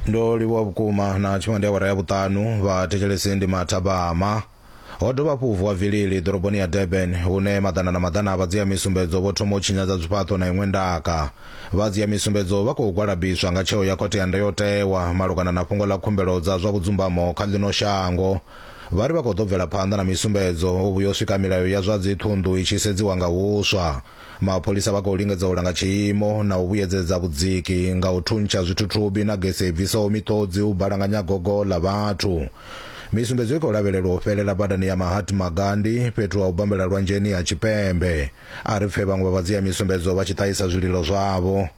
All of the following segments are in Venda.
ndo livhuwa vhukuma na tshiṅwe ndi awara ya vhuṱanu vhathetshelesi ndi mathabama ho dovha hafhu vuwa vilili ḓoroboni ya durban hune maḓana na maḓana a vha dzia misumbedzo vho thoma u tshinyadza zwifhaṱo na iṅwe ndaka vha dzia misumbedzo vha khou gwalabiswa nga tsheo ya khothe ya ndayotewa malugana na fhungo ḽa khumbelo dza zwa vhudzumbamo kha ḽino shango vha ri vha khou ḓo bvela phanḓa na misumbedzo u vhuya u swika milayo ya zwa dziṱhunḓu i tshi sedziwa nga huswa Mapholisa vha khou lingedza u langa tshiimo na u vhuyedzedza vhudziki nga u thuntsha zwithuthubi na gese i bvisaho miṱodzi u balanganya gogo ḽa vhathu. Misumbedzo i khou lavhelelwa u fhelela badani ya Mahatma Gandhi fhethu ha u bambela lwanzheni ha Tshipembe. A ri pfe vhaṅwe vha vhadzia misumbedzo vha tshi ṱahisa zwililo zwavho.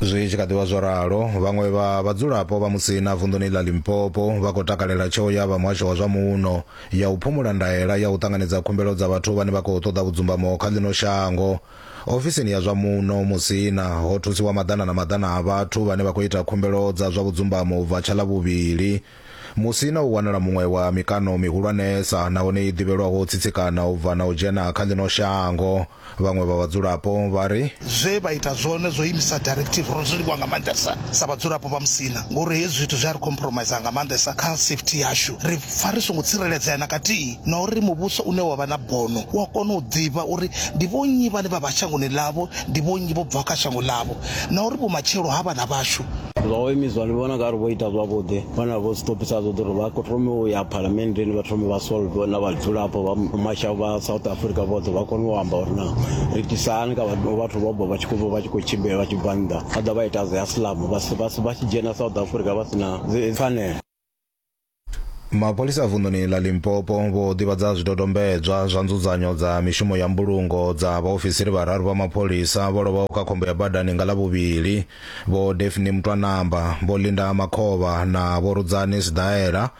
Zwi tshi kha ḓivha zwo ralo, vhaṅwe vha vhadzulapo vha Musina vunḓuni ḽa Limpopo vha khou takalela tsheo ya vha muhasho wa zwa muno ya u phumula ndaela ya u ṱanganedza khumbelo dza vhathu vhane vha khou ṱoḓa vhudzumbamo kha ḽino shango. Ofisini ya zwa muno Musina ho thusiwa maḓana na maḓana a vhathu vhane vha khou ita khumbelo dza zwa vhudzumbamo u bva tsha ḽa vhuvhili. Musina u wanala muṅwe wa mikano mihulwanesa nahone i ḓivhelwaho u tsitsikana u bva na u dzhena kha ḽino shango. Vhaṅwe vha vhadzulapo vha ri. Zwe vha ita zwone zwo imisa directive, ro zwi livhuwa nga maanḓesa sa vhadzulapo vha Musina ngauri hezwi zwithu zwi a ri compromiser nga maanḓesa kha safety yashu. Ri pfa ri songo tsireledzea na kathihi na uri muvhuso une wa vha na bono u a kona u ḓivha uri ndi vhonnyi vhane vha vha shangoni ḽavho, ndi vhonnyi vho bvaho kha shango ḽavho na uri vhumatshelo ha vhana vhashu zwa u imiswa ndi vhona nga ri vho ita zwavhuḓi vhana vho stopisa zwoṱhe uri vha thome u ya phalamenndeni vha thome vha solve na vhadzulapo vha masha vha south africa vhoṱhe vha kone u amba uri na ri tisani ka vhathu vho bva vha tshi khou bva vha tshi khou tshimbila vha tshi bva nnḓa vha ḓa vha ita zwi asilamu vha tshi dzhena south africa vha si na pfanelo mapholisa vunḓuni ḽa limpopo vho ḓivhadza zwidodombedzwa zwa nzudzanyo dza mishumo ya mbulungo dza vhaofisiri vhararu vha mapholisa vho lovhaho kha khombo ya badani nga ḽa vhuvhili vho defni mutwanamba vho linda makhovha na vho rudzani sidaela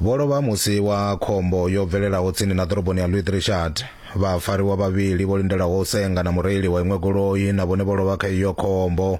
vho lovha musi wa khombo yo bvelelaho tsini na ḓoroboni ya louis richard vhafariwa vhavhili vho lindelaho u senga na mureili wa iṅwe goloi na vhone vho lovha kha iyo khombo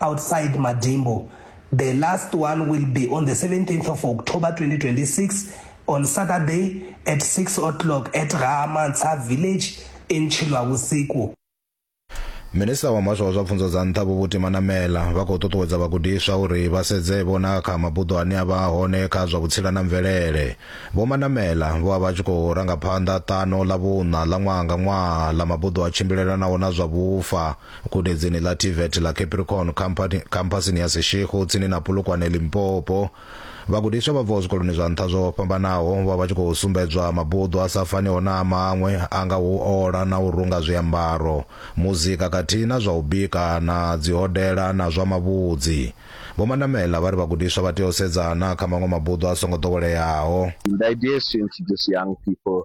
Outside Madimbo, the last one will be on the 17th of October 2026 on Saturday at 6 o'clock at Gaamansa village in Chilwavusiku. Minisiṱa wa muhasho wa zwa pfunzo dza nṱha Vho Buti Manamela vha khou ṱuṱuwedza vhagudiswa uri vha sedze vho na kha mabuḓo ane a vha hone kha zwa vhutsila na mvelele. Vho Manamela vho vha vha tshi khou ranga phanḓa ṱano ḽa vhuṋa ḽa ṅwaha nga ṅwaha ḽa mabuḓo a tshimbilelanaho na zwa vhufa gudedzini ḽa tvet ḽa capricorn khamphasini ya seshego tsini na polokwane limpopo vhagudiswa vha bvaho zwikoloni zwa nṱha zwo fhambanaho vha vha tshi khou sumbedzwa mabuḓo a sa faniho na a maṅwe a nga u ola na u runga zwiambaro muzika khathihi na zwa u bika na dzihodela na zwa mavhudzi vho mandamela vha ri vhagudiswa vha tea u sedzana kha maṅwe mabuḓo a songo ḓoweleaho The idea is to introduce young people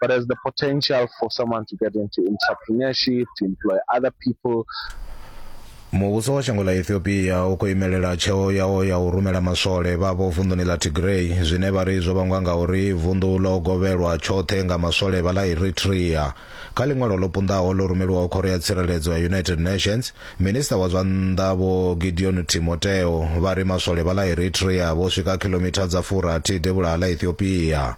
but has the potential for someone to get into entrepreneurship, to employ other people, muvhuso wa shango ḽa ethiopia u khou imelela tsheo yawo ya u rumela maswole vhavho vunḓuni ḽa tigray zwine vha ri zwo vhangwa nga uri vunḓu ḽo govhelwa tshoṱhe nga maswole vha ḽa eritrea kha ḽiṅwalo ḽo punḓaho ḽo rumeliwaho khoro ya tsireledzo ya united nations minista wa zwa nnḓa vho gideon timoteo vha ri maswole vha ḽa eritrea vho swika khilomitha dza furathi devhula ha ḽa ethiopia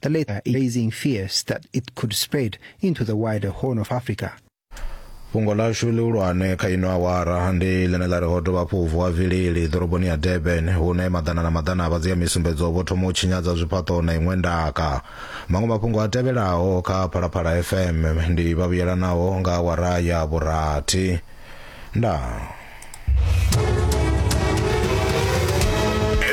the latter raising fears that it could spread into the wider Horn of Africa. fhungo ḽashu ḽihulwane kha ino awara ndi ḽine ḽa ri ho dovha hafhu vuwa vilili ḓoroboni ya durban hune maḓana na maḓana a vhadzia misumbedzo vho thoma u tshinyadza zwifhaṱo na iṅwe ndaka maṅwe mafhungo a tevhelaho kha phalaphala fm ndi vhavhuyelanaho nga awara ya vhurathi ndaa